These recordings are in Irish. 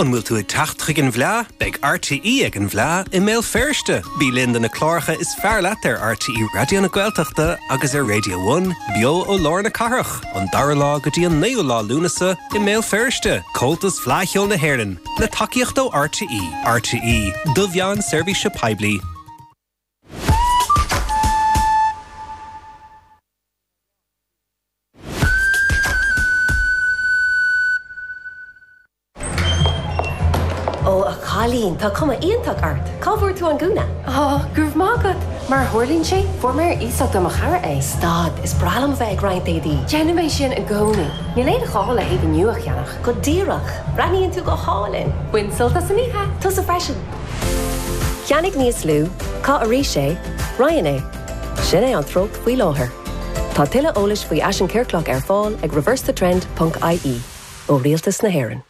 An bhfuil tú ag teacht chuig an bhFleá? Beidh RTÉ ag an bhFleá i mBéal Feirste! Bí linn do na cláracha is fearr leat ar RTÉ Raidió na Gaeltachta agus ar Raidió One, beo ó lár na cathrach, ón 2ú lá go dtí an 9ú lá Lúnasa, i mBéal Feirste! Comhaltas Fleá Cheoil na hÉireann, le tacaíocht ó RTÉ. RTÉ, do mheán seirbhíse poiblí. Ó a chailín, tá cuma iontach ort! Cá bhfuair tú an gúna? Ó, go raibh maith agat! Mar a tharlaíonn sé, fuair mé ar iasacht ó mo chara é. Stad, is breá liom a bheith ag roinnt éadaí! Déanaim é sin i gcónaí. Níl aon ghá le héadaí nua a cheannach. Go díreach! Breathnaíonn tú go hálainn! Bain sult as an oíche! Tusa freisin! Ceannaigh níos lú, Caith arís é, Roinn é. Sin é an treocht faoi láthair. Tá tuilleadh eolais faoi fhaisean ciorclach ar fáil ag reversethetrend ponc IE ó Rialtas na hÉireann.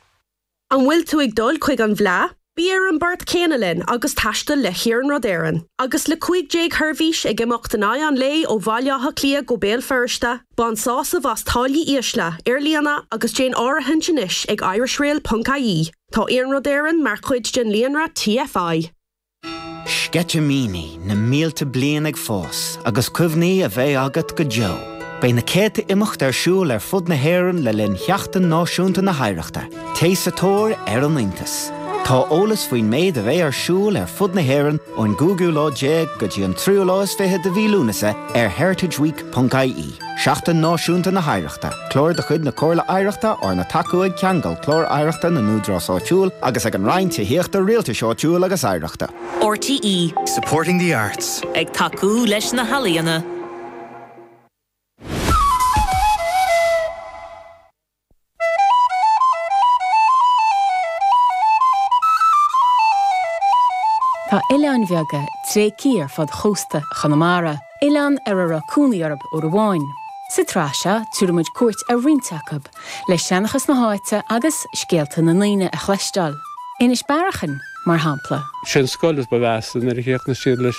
An bhfuil tú ag dul chuig an bhFleadh? Bí ar an bport céanna linn agus taistil le hIarnród Éireann. Agus le 15 sheirbhís ag imeacht in aghaidh an lae ó Bhaile Átha Cliath go Béal Feirste, bain sásamh as táillí ísle ar líne agus déan áirithint anois ag irishrail ponc IE. Tá Iarnród Éireann mar chuid den líonra TFI. Sceitimíní na mílte bliain ag fás agus cuimhní a bheidh agat go deo. Beidh na céadta imeacht ar siúl ar fud na hÉireann le linn Sheachtain Náisiúnta na hOidhreachta. Téigh sa tóir ar an iontas. Tá eolas faoin méid a bheidh ar siúl ar fud na hÉireann ón gcúigiú lá déag go dtí an tríú lá is fiche de mhí Lúnasa ar heritageweek.ie. Seachtain Náisiúnta na hOidhreachta, Clár de chuid na Comhairle Oidhreachta arna tacú ag Ceangal, Clár Oidhreachta na nÚdarás Áitiúil, agus ag an Roinn Tithíochta, Rialtais Áitiúil agus Oidhreachta. RTÉ. Supporting the arts. Ag tacú leis na healaíona. Tá oileáin bheaga tréigthe ar fud chósta Chonamara, oileáin ar a raibh cónaí orthu uair amháin. Sa tsraith seo, tabharfaidh muid cuairt ar roinnt acub, le seanchas na háite agus scéalta na ndaoine a chloisteáil, Inis Bearacháin, mar shampla. Sé an scoil is ba mheasa nuair a chríochnaigh siad leis.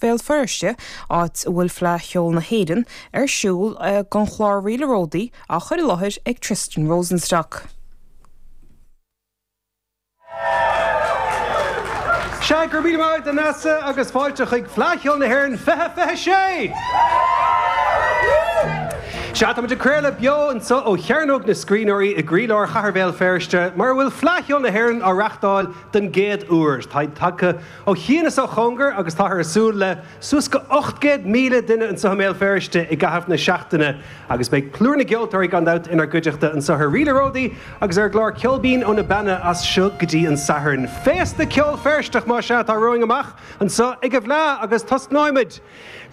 Bhéal Feirste, áit a bhfuil Fleadh Cheoil na hÉireann ar siúl, don chlár Ríl an Ródaí á chur i láthair ag Tristan Rosenstock. Sea, go raibh míle maith agat a Neasa agus fáilte chuig Fleadh Cheoil na hÉireann 2026! Sea, táimid ag craoladh beo anseo ó Chearnóg na Scríbhneoirí i gcroílár Chathair Bhéal Feirste mar a bhfuil Fleadh Cheoil na hÉireann á reáchtáil den gcéad uair. Táid tagtha ó chian is ó chóngar agus táthar ag súil le suas go 800,000 duine anseo i mBéal Feirste i gcaitheamh na seachtaine agus beidh plúr na gceoltóirí gan dabht inár gcuideachta anseo ar Ríle Ródaí agus ar an gclár Ceol Binn ó na Beanna as seo go dtí an Satharn. Féasta ceoil Feirsteach, más ea, atá romhainn amach anseo ag an bhFleadh agus tosnóimid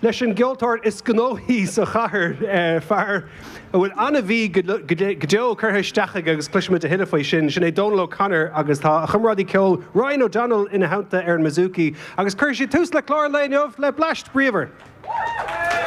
leis an gceoltóir is gnóthaí sa chathair, fear a bhfuil an-mhí go deo curtha isteach aige agus cloisfimid a thuilleadh faoi sin. Sin é Dónal O'Connor agus tá a chomrádaí ceoil Ryan O'Donnell ina theannta ar an mbouzouki agus cuirfidh siad tús le clár an lae inniu le bleaist bríomhar.